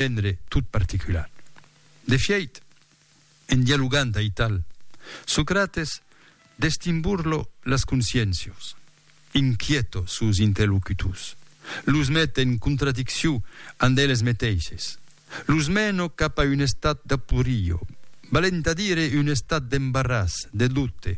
Genre tot particular. De fièit, en dialogant aital, Socrates destimburlo las consciéncios, inquieto sos interlocutors, los met en contradiccion ant eles meteishes, los meno cap a un estat d'aporio, valent a dire un estat d'embarràs, de doute.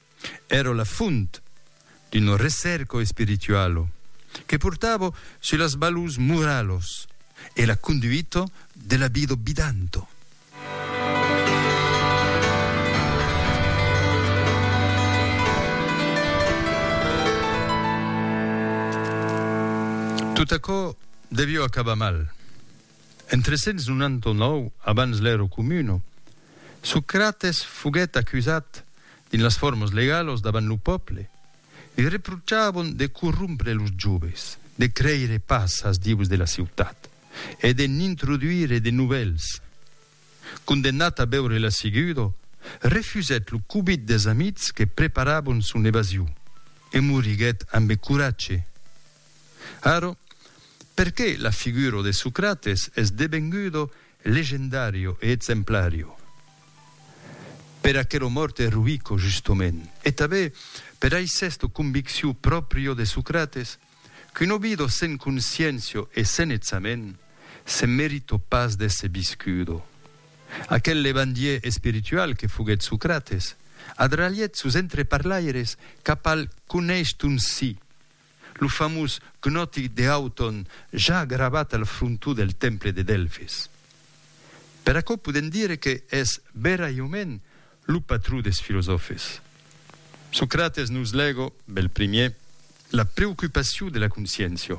Èra la font d'uno recerco espiritualo que portava su las balors moralos e la conduita de la vida bidanto. Tot aquò devió acabar mal. En 399 abans l'èro communo, Socrates foguèt acusat dins las formas legalos davant lo pòple. Li reprochavon de corrompre los joves, de creire pas as dieus de la ciutat e de n'introduire de novèls. Condemnat a beure la segudo, refusèt lo cobit des amics que preparavon son evasion e moriguèt ambe coratge. Arò, perqué la figuro de Socrates es devengudo legendario e exemplario? Per aquero mort eroico, justomènt, e tabé per ai sesto convicciu proprio de Socrates, qu'un obido sen consciencio e sen etsament, se merito pas d'èsser viscudo. Aquel levandier espiritual que foguèt Socrates, adralhèt sos entreparlaires cap al coneish ton si, lo famós Gnotic de Hauton ja gravat al frontó del temple de Delfis. Per aquò podèm dire que es veraiument lo patró des filosòfes. Socrates nos legó, bel primier, la preocupacion de la consciéncia,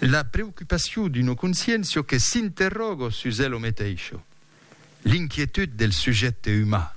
la preocupacion d'una consciéncia que s'interrogó sus elo meteisho, l'inquietud del sujècte umà.